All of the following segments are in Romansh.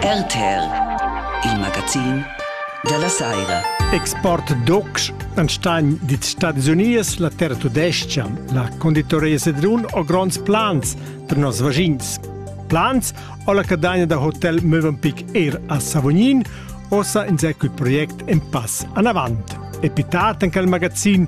RTR, il magazin dalla saira. Export docs an Stein dit Stadis Unies, la terra tudescian, la conditoria Sedrun o gronds plans per nos vagins. Plans o la cadagna da hotel Mövenpick er a Savognin, osa in secul project en pass anavant. Epitat en cal magazin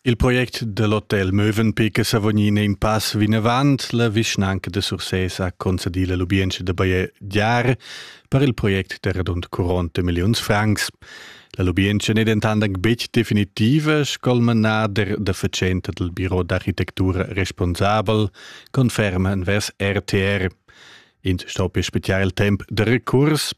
Il project del hotel Mövenpick è savognin in pass vinavant. La vischnanca de Sursés ha concedì la lubientscha da bajegiar per il project de radund 40 milliuns francs. La lubientscha n'è dentant anc betg definitiva, sco il manader da fatschenta del biro d'architektura responsabel conferma envers RTR. Ins sto per spezial il temp da recurs.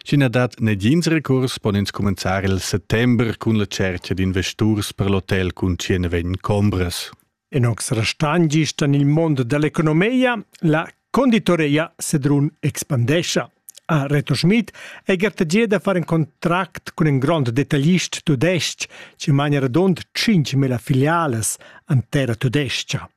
Sch'i na dat negins recurs, pon ins cumenzar il settember cun la tschertga d'investurs per l'hotel cun 120 chombras. En ox restan gist en il mond dell'economia la conditoria Sedrun expandescha. A Reto Schmid è gartegia da far in contract cun in grond detaglist tudestg che mania radund 5.000 filiales an terra tudescha.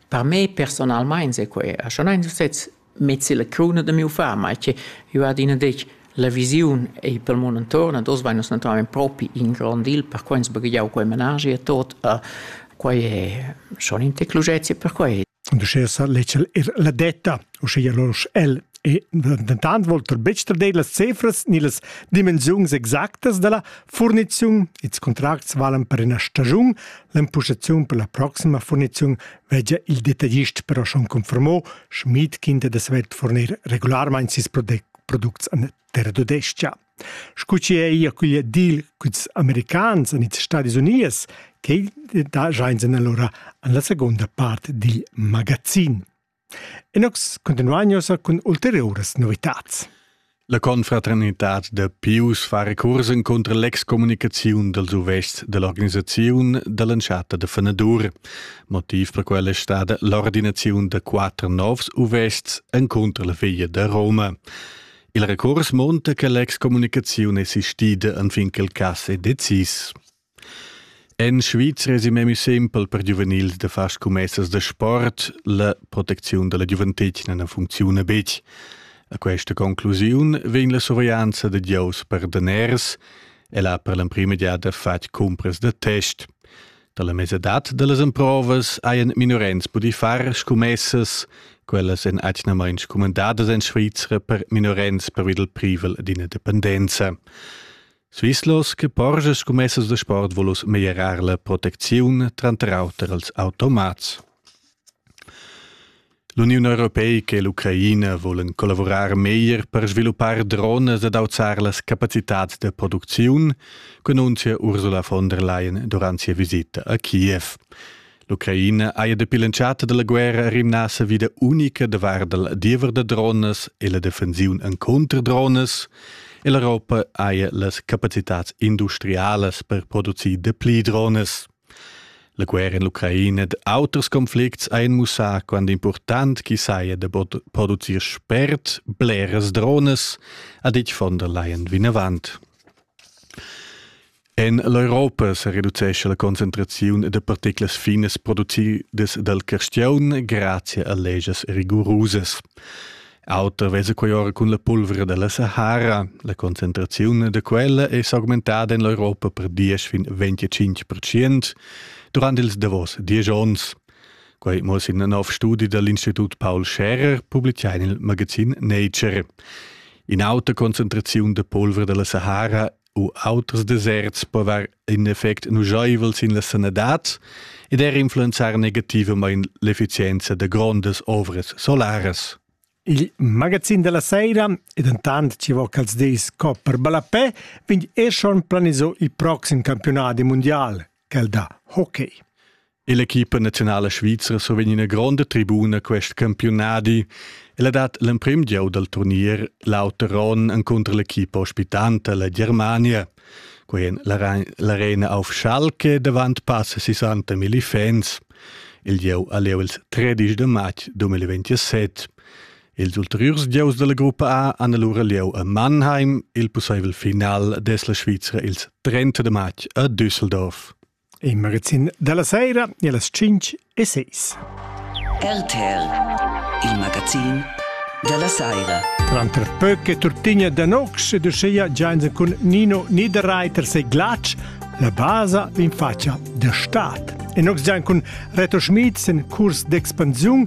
Per me personalmein sequei, e schon eins u sez mezzi la cruna da miu far, mai che jeu adina detg la visiun ei pel mund entuorn ed oz vein nus naturalmein propi in grond deal per quei ens baghegiau quei menaschi e tot e quei è schon in tec luschezia per quei. Und uschè sa ledscha ir la detta, uschia lur sch'el e dentant volter betg trader las cifras ni las dimensiuns exactas dalla furniziun. Ils contracts valan per ina stagiun, L'empustaziun per la proxima furniziun vegia il detagist però schon confermò, Schmid quinta da svelt fornir regularmain sis products en terra tudescha. Scu chi è ia cuglia dil cuts americans en ils Stadis Unies, che daja insен allora en la seconda part dil magazin. E nus continuain ussa cun ulteriuras novitads. La confraternitad da Pius fa recurs cunter l'excommunicaziun dals uvests dell'organisaziun dall'entschatta da fenadur. Motiv per quella è stata l'ordinaziun da quatter novs uvests encunter la figlia da Roma. Il recurs monta che l'excommunicaziun è sistida anfin che il cass è decis. En Svizra esi memia simpel per giuvenils da far scumessas da sport. La protecziun da la giuventetgna na funcziuna betg. A questa conclusiun vegn la surveglianza da gieus per daners. El ha per l'emprima giada fatg cumpras da test. Dalla mesadad da las emprovas hajan minorens pudì far scumessas. Quellas èn atgnamain scumandadas en Svizra per minorens pervi dal privel d'ina dependenza. Svizlos che porscha scummessas da sport volus meglierar la protecziun tranter auter als automats. L'Uniun Europeica e l'Ucraina volen collavurar meglier per sviluppar drones ed auzar las capacitats da producziun, cununzia Ursula von der Leyen durant sia visita a Kiev. L'Ucraina haja dapi l'entschatta della guerra rimnà sa vida unica da vardel diever da drones e la defensiun encontr drones e l'Europa haja las capacitats industrialas per producir dapli drones. La guerra in l'Ucraina ed auters conflicts ha mussà quando important chi saja da producir spert bleras drones, ha ditg von der Leyen vinavant. En l'Europa sa reducescha la concentraziun da particlas finas producidas dal carstiaun grazia a legias rigurusas. Auter vesa quai ora cun la pulvra da la Sahara. La concentraziun da quella è s'augmentada en l'Europa per 10 fin 25 percent durant ils davos 10 onns. Quai muss in nov studi da l'Institut Paul Scherer publitgà in il magazin Nature. In auta concentraziun da pulvra dalla Sahara u auters deserts po var in effect nuschaivel sin la sanadad ed er influenzar negativamain l'effizienza da grondas ovras solaras. Il magazin della sera, ed intant ci vo quels dis co per ballapè, vegn er schon planisò il proxim campionat mundial. quel da hockey. L'equipa nazionala svizra survegn ina gronda tribuna quest campiunadi. Ella dat l'emprim gieu dal turnier l'auter onn encunter l'equipa ospitanta, la Germania. Quei en l'arena auf Schalke davant pass 60 mili fans. Il gieu a leu ils 13 de matg 2027. Ils ulteriurs gieus dalla gruppa A han allura lieu a Mannheim, il pusseivel final des la Svizra ils 30 de matg a Düsseldorf. In magazin dalla sera e las 5 e 6. RTL, il magazin dalla sera. Tranter Pöcke Turtinia Danox e Duscheia Giansen cun Nino Niederreiter sei Glatsch la basa in faccia der Staat. En ox gian cun Reto Schmid sen curs d'expansiun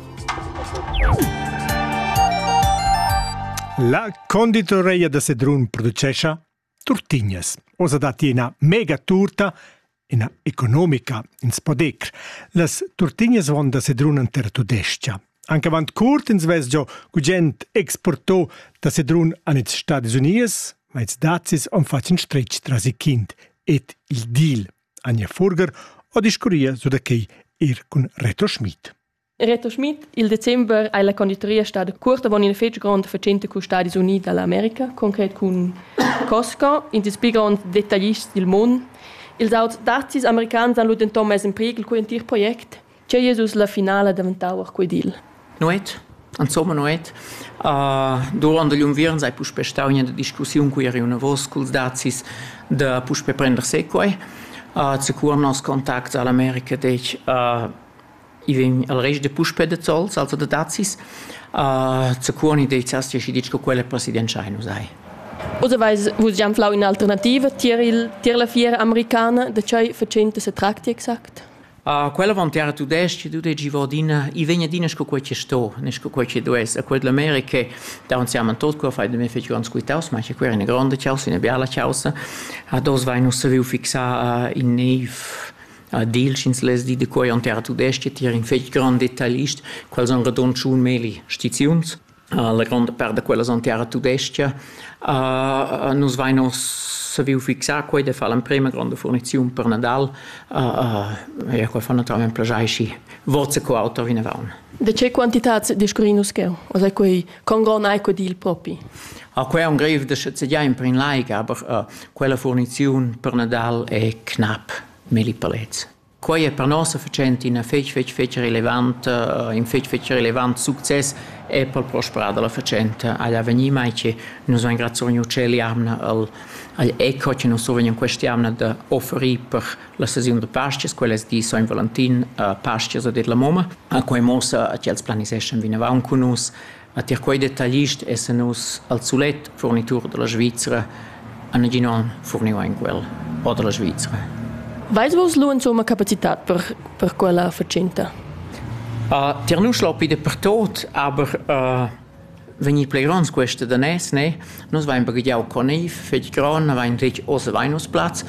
La conditoreia da Sedrun producescha turtignas. Osa datti ina mega turta ina economica ins podecr. Las turtignas von da Sedrun an terra tudescha. Anche avant curt ins ves giò gugent exportò da Sedrun an its Stadis Unies, ma its dazis on facin stretg tras i kind et il deal Anja Furger o discurria su da quei ir cun Reto Schmid. Reto Schmid, il december ei la conditoria stada cuort avon in fetg grond fatschenta cun Stadis Uniti dall'America, concret cun Costco, in dils pli gronds detaglists dil mund. Ils auters dazis americans han lu denton mess in prighel cugl entir project, che Jesus la finala daventau quei dil. Nuet, insomma Nuet, uh, durant igl unviern sei puspè stau ina discussiun cui eri unavos culs dazis da puspè prender se quei. Uh, Secur nos contacts all'America dec uh, I vegn al rest da puspè da zols, also da dazis. Uh, zaccuoni deizas ti aschi ditg co quella presidentscha hai nus hai. Oder weiß vus già flau un'alternativa tier il tier la fiera americana da chai facente se tracti exact? Uh, quella van terra tudesca tudegi vodina i vegna dina sco quei che sto ne sco quei che dues a quella America da un siamo tot qua fai de me feci un squitaus ma che quera una grande causa una bella causa a dos vai non savevo fixar in nave Ad il sch'ins less dir de quei onter tudestg tier in fetg grand detailist, quals han redonschun meli stiziuns. La gronda part da quellas han terra tudestga. nus vein oz saviu fixar quei de far l'emprema gronda furniziun per Nadal. ja, quei fa naturalmein plaschei schi forza co auter vinavon. De che quantitats discurrin nus cheu? Oz ei quei con gron ei quei dil propi? Ah, quei è un grev da sceziar in prin laiga, aber uh, quella furniziun per Nadal è knapp. Milli palets. Quai è per nossa fatschenta ina fetg, fetg, fetg relevant, in fetg, fetg relevant success e per il prosperar da la fatschenta agl avegnir, mai che nus engraziain u tschel jamna al, agl ECO che nus survegnan questa jamna da offerir per la sesiun da pastias, quellas di Sogn Valentin, pastias a det la momma. Quai muossa ch'els planiseschan vinavant cun nus A tier quei detaglist essan nus al sulet furnitur dalla Svizra ha negin onn furniu ein quel o dalla Svizra. Veis vus lu insumma capacitat per, per quella fatschenta? Uh, tier nus l'aupi dapertot, aber uh, vegnir pli gronds queste danès, ne? Nus vain baghiau coniv fetg gron, avain ritg oz avain nus plaz.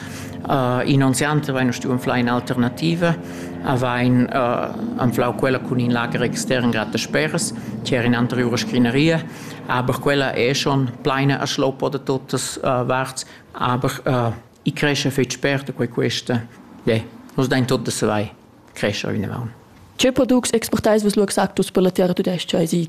Inonziant avain nus stuü anflar in'alternativa, avain anflau quella cun in lager extern grad dasperas, che era in'anteriura scrinaria, aber quella è schon pleina a schloppa da tuttas varts, aber i crescha fetg spert e quei questa, le, nus dain tut da savair, crescha vinavant. Tge products exportais vus lu exactus per la terra tudestga? Esi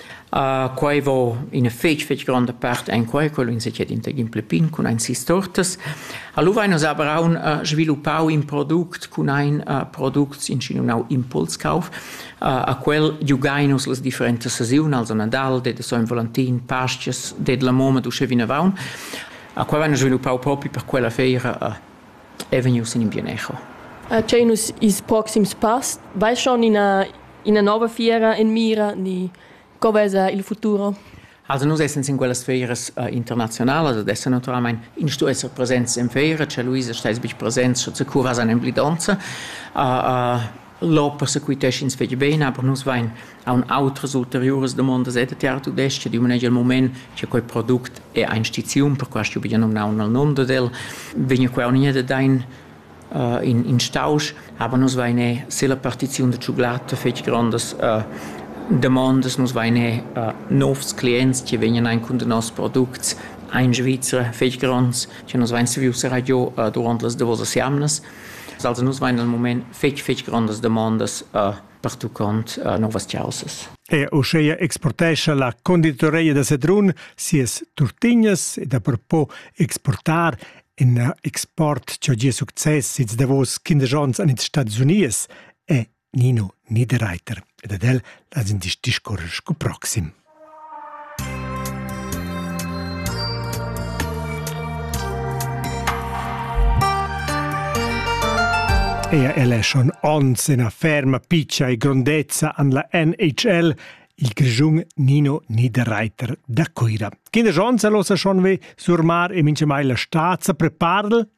Quai vo üna fich fich gronda part enquai co ün se dschet intagin plü pin cun aint sis tortas. Alura hain nus aber aun sviluppau in product cun ain products inschinunau Impulskauf. A quel giugain nus las differentas sesiun, also Nadal, det e so ün volantin, paschias, det la momma d'uschè vinavaunt. A quai vain nus sviluppau propi per quella feira è vegnius en in pionecho. Tgei nus ils proxims pass? Vai schon ina, ina nova fiera en mira ni co vesa il futuro? Also nus essens in quellas feiras uh, internationalas ed esser naturalmein in sto esser presents en feira, cioè Luisa steis bich presents, sche se curas an emblidonza. Uh, uh, Lò persequitesch'ins fetg bene, aber nus vein aunc outras ulteriuras damondas ed tiara tudestga di manegia il mument che quei product è ein stiziun, per questo ho numnau nel nome ad el, vegna quei uniert ein uh, in, in stausch, aber nus vein eh, se la partiziun de cioclata fetg grandas uh, demandas, nus vein eh, uh, novs clients, che vegnan ein cun de nos products ein Svizra fetg grands, che nus vein saviu serrar giu uh, durant las davosas jamnas. Also nus vain dal mumaint fich fich grondas damondas pertuchond nouvas chaussas. E uscheia exportescha la conditoreia da Sedrun sias turtignas ed apropo exportar in export cha gia success its davos quindesch ons an ils Stads Uniers è Nino Niederreiter ed ad el las in discorrer sco proxim. Ea el è schon ons ena ferma piccia e grondezza an la NHL il grigiun Nino Niederreiter da Coira. Kinder Jones losa schon ve surmar e mince mai la stazza preparl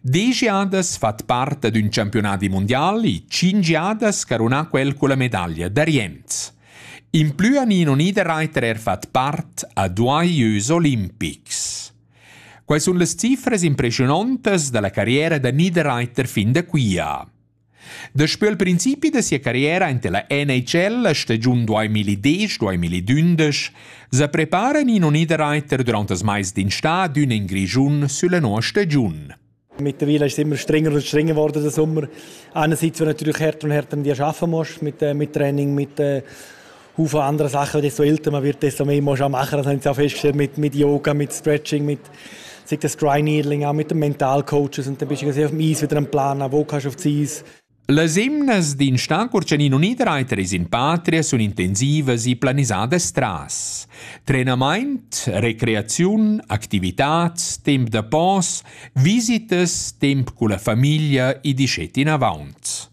Degiadas fat part d'ün champiunadi mundial e tschinch jadas carunà quel culla medaglia d'Arienz. In plü ani non ida Reiter er fat part a duai jeux olimpics. Quai sun las cifras impreschiunontas da la carriera da Niederreiter fin da quia. Daspö il principi da sia carriera ante la NHL la stagiun 2010-2011 sa preparan in Uniderreiter durant das mais d'in stadion in Grischun sülla noa stagiun. Mittlerweile ist es immer strenger und strenger geworden der Sommer. Einerseits, weil du natürlich härter und härter an dir arbeiten musst mit, äh, mit Training, mit, äh, Haufen andere Sachen, desto älter man wird, desto mehr muss man machen. Das habe ich auch festgestellt mit, mit Yoga, mit Stretching, mit sich das Dry Needling auch mit den Mentalcoaches und dann bist du auf dem Eis wieder am Planen, wo kannst du auf das Eis. Las emnas d'in stan Curcianin Unireiter es in patria sun intensivas e planisadas tras. Trenamaint, recreaziun, activitats, temp da pos, visitas, temp con la famiglia e disceti in avaunt.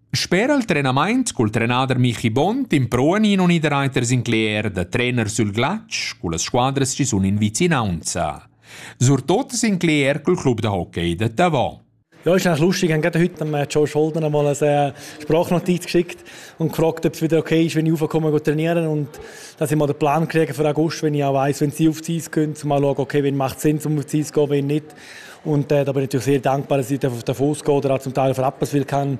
Sper al trenamaint cul trenader Michi Bont impruan in unidreiter Sinclair da trener sül glatsch cullas squadras chi sun in vicinaunza. Surtot Sinclair cul club da hockey da Tavò. Ja, ist eigentlich lustig. Ich habe gerade heute Joe Scholten mal eine Sprachnotizia geschickt und gefragt, ob es wieder okay ist, wenn ich raufkomme und trainieren Und dass ich mal den Plan kriege für August, wenn ich auch weiss, wenn sie auf 30 gehen, um mal schauen, okay, wenn macht Sinn, um auf 30 zu gehen, wenn nicht. Und äh, da bin ich natürlich sehr dankbar, dass ich davon ausgehe oder auch zum Teil auf Rapperswil kann,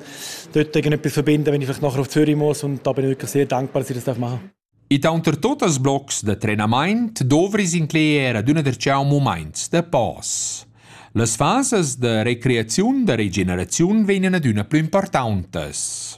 dort irgendetwas verbinden, wenn ich vielleicht nachher auf Zürich muss. Und da bin ich wirklich sehr dankbar, dass ich das machen darf. Ita unter totes blocs de trenament dovris incleer adüna der ciao moments de pass. Las fases de recreaziun de regeneraziun vegnan adüna plü importantas.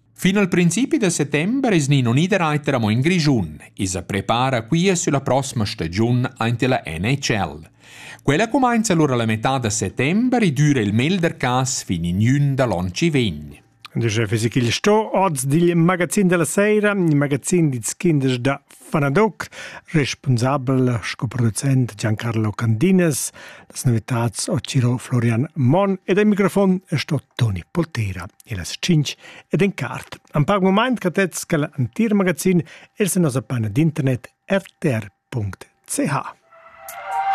Fin al principi da settember es Nino Niederreiter amo in Grischun e sa prepara quia sülla prossima stagiun aint illa NHL. Quella cumainza alura la metà da settember e düra il melder cas fin in jün da l'on chi vegn. Dice Fisichil sto oz dil magazin della sera, il magazin di kindes da Fanadoc, responsabel sco producent Giancarlo Candinas, las novitats ho Ciro Florian Mon ed al microfon sto Toni Poltera. e las tschinch ed en cart. An pac mumaint catets ca l'antir magazin els a nossa panna d'internet rtr.ch.